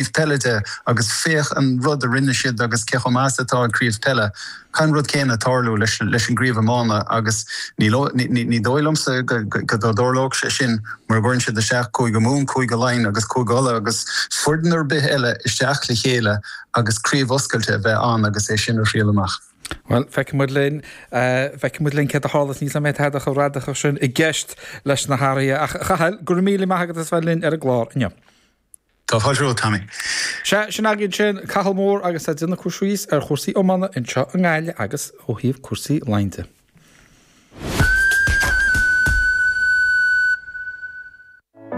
craobh peile de agus féach an rud a rinne siad agus cé chomh maith is atá an craobh peile. Caithfidh an rud céanna tarlú leis an gcraobh iomána agus ní dóigh liomsa go dtarlóidh sé sin mura gcuireann siad isteach Cúige Mumhan, Cúige Laighean agus Cúige Uladh agus foireann ar bith eile isteach le chéile agus craobh oscailte a bheith ann agus é sin a thriail amach. Bhuel, feicfidh muid linn. Feicfidh muid linn céard a tharlas. Níl tada chomh radacach sin i gceist leis na hathruithe. Ach, a Chathail, go raibh míle maith agat as bheith linn ar an gclár inniu. Tá fáilte romhat, Tommy. Sea, sin againn sin, Cathal Moore agus é ag déanamh cur síos ar chúrsaí iomána anseo i nGaillimh agus ó thaobh cúrsaí Laighean de.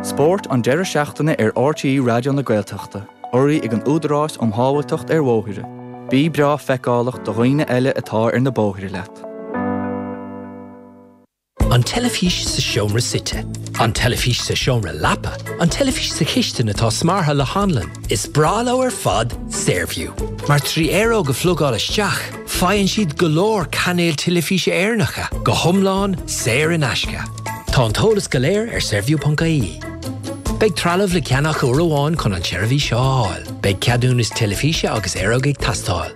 Spórt an deireadh seachtaine ar RTÉ Raidió na Gaeltachta, urraithe ag an Údarás um Shábháilteacht ar Bhóithre. Bí breá feiceálach do dhaoine eile atá ar na bóithre leat. An teilifís sa seomra suite. An teilifís sa seomra leapa. An teilifís sa chistin atá smeartha le hanlann. Is breá leo ar fad Saorview, mar trí aeróg a phlugáil isteach, faigheann siad go leor cainéil teilifíse Éireannacha, go hiomlán saor in aisce. Tá an t-eolas go léir ar Saorview.ie. Beidh trealamh le ceannach uair amháin chun an tseirbhís a fháil. Beidh ceadúnas teilifíse agus aeróg ag teastáil.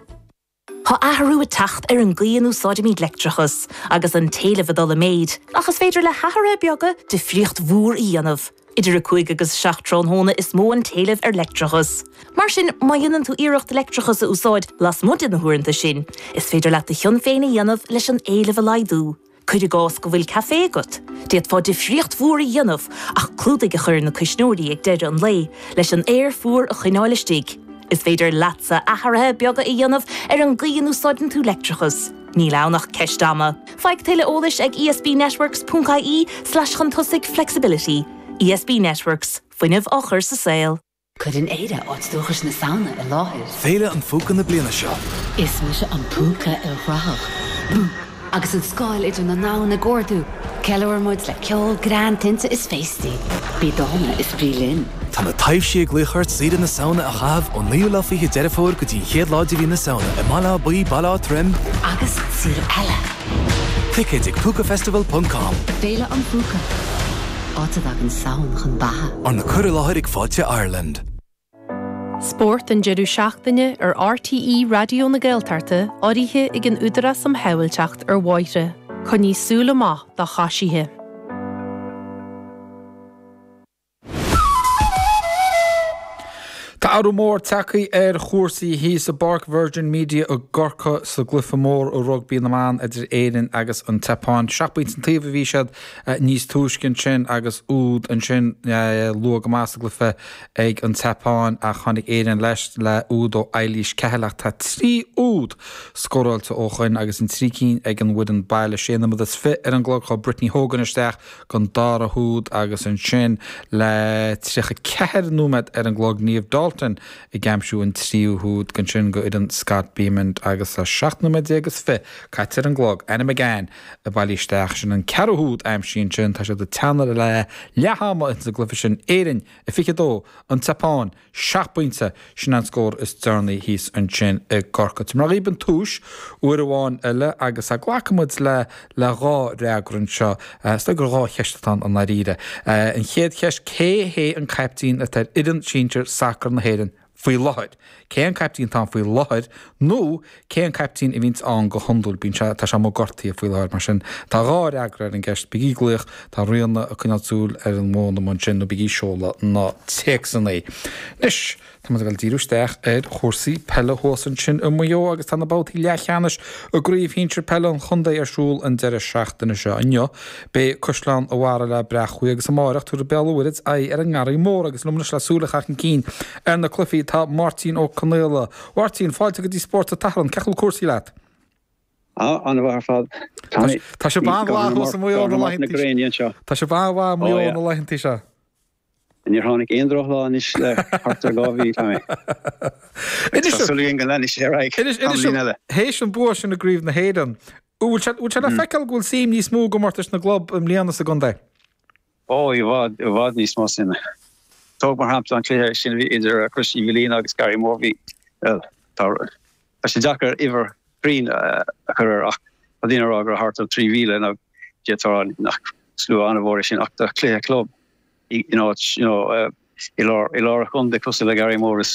Tá athrú ag teacht ar an gcaoi a n-úsáidimid leictreachas, agus an t-éileamh ag dul i méid, ach is féidir le hathruithe beaga difríocht mhór a dhéanamh. Idir 5 agus 7 tráthnóna is mó an t-éileamh ar leictreachas. Mar sin, má dhéanann tú iarracht leictreachas a úsáid lasmuigh de na huaireanta sin, is féidir leat do chion féin a dhéanamh leis an éileamh a laghdú. Cuir i gcás go bhfuil caifé agat, d'fhéadfá difríocht mhór a dhéanamh ach clúdaigh a chur ar na cuisneoirí ag deireadh an lae leis an aer fuar a choinneáil istigh. Is féidir leatsa athruithe beaga a dhéanamh ar an gcaoi a n-úsáideann tú leictreachas, níl ann ach ceist ama. Faigh tuilleadh eolais ag ESBnetworks.ie slash chun tosaigh flexibility. ESB Networks, fuinneamh á chur sa saol. Cuireann Éire áit dúchais na Samhna i láthair. Féile an Phúca na bliana seo. Is mise an púca ilghrathach. Bú! Agus an scáil idir na domhain ag ardú, ceiliúraimid le ceol greann tinte is féastaí. Bí dána is bí linn. Tá na taibhsí ag glaoch ort saoire na Samhna a chaitheamh ón 9ú lá Fiche Deireadh Fómhair go dtí an chéad lá de mhí na Samhna i mBaile Átha Buí, Baile Átha Troim, agus araile! Ticéid ag pucafestival.com. Féile an Phúca. Áit a dtagann Samhain chun beatha. Arna cur i láthair ag Fáilte Ireland. Spórt an deireadh seachtaine ar RTÉ Raidió na Gaeltachta urraithe ag an Údarás um Shábháilteacht ar Bhóithre. Coinnigh súil amach do choisithe. Tá athrú mór tagtha ar chúrsaí thíos i bPáirc Virgin Media i gCorcaigh sa gcluiche mór i rugbaí na mban idir Éirinn agus an tSeapáin. Seacht bpointe an taobh a bhí siad Níos túisce ansin, agus úd ansin luath go maith sa gcluife ag an tSeapáin, ach tháinig Éirinn leis le úd ó Eilís Cahill, ach tá trí úd scóráilte ó shoin agus an trí cinn ag an bhfoireann baile. Sé nóiméad is fiche ar an gclog chuaigh Brittany Hogan isteach don dara húd agus ansin le tríocha ceathair nóiméad ar an gclog Niamh Dalton ag aimsiú an tríú húd ansin do fhoireann Scott Bemand agus le seacht nóiméad déag is fiche caite ar an gclog. Anna McGann. Bailigh isteach sin an ceathrú húd aimsithe ansin tá siad ag teannadh le leath-ama ins an gcluife sin, Éirinn a 22, An tSeapáin seacht bpointe, sin é an scór is deireanaí thíos ansin i gCorcaigh. Tabharfaidh mé dhaoibh an tomhais uair amháin eile agus glacfaidh muid le le dhá fhreagra anseo. Is dóigh gur dhá cheist atá ann i ndáiríre. An chéad cheist, cé hé an caiptín atá ar fhoireann sinsir sacair na hÉireann? faoi láthair. Cé an caiptín atá ann faoi láthair nó cé an caiptín a bhíonns ann go hiondúil? Bíonn sé, tá sé amuigh gortaithe faoi láthair, mar sin tá dhá fhreagra ar an gceist, bígí ag glaoch, tá Ríona ag coinneáil súil ar an bhfón amuigh ansin, nó bígí ag seoladh na téacsanna. Anois, tá muid ag dul ag díriú isteach ar chúrsaí peile thuas ansin i Maigh Eo agus tá na babhtaí leathcheannais i gcraobh shinsir peile an chontae ar siúl an deireadh seachtaine seo inniu. Beidh Caisleán an Bharraigh le Bréachmhaigh agus amáireach tabharfaidh Béal an Mhuirthead aghaidh ar an nGarraí Mór agus liom anois le súil a chaitheamh chun cinn ar na cluichí tá Máirtín Ó Conaola. A Mháirtín, fáilte go dtí Spórt an tSathairn, cén chaoi a bhfuil cúrsaí leat? Ana-mhaith ar fad. Tá sé an-bhreá thuas i Maigh Eo na laethanta seo. Níor tháinig aon drochlá anois le thart ar dhá mhí, tá mé ag súil go leanfaidh sé ar aghaidh tamaillín eile. Théis an bua sin i gCraobh na hÉireann, an bhfuil sé le feiceáil go bhfuil suim níos mó i gcomórtais na gclub i mbliana sa gcontae? Ó, i bhfad, i bhfad níos mó suime. Tóg mar shampla an cluiche sin a bhí idir Chrois Uí Mhaoilíona agus Garraí Mór, bhuel, tá rud. Tá sé deacair uimhir chruinn a chur air ach tá daoine ag rá go raibh thart ar 3,000 nó d'fhéadfá a rá nach slua an-mhór é sin ach do chluiche club in áit, you know, i lár an chontae cosúil le Garraí Mór is.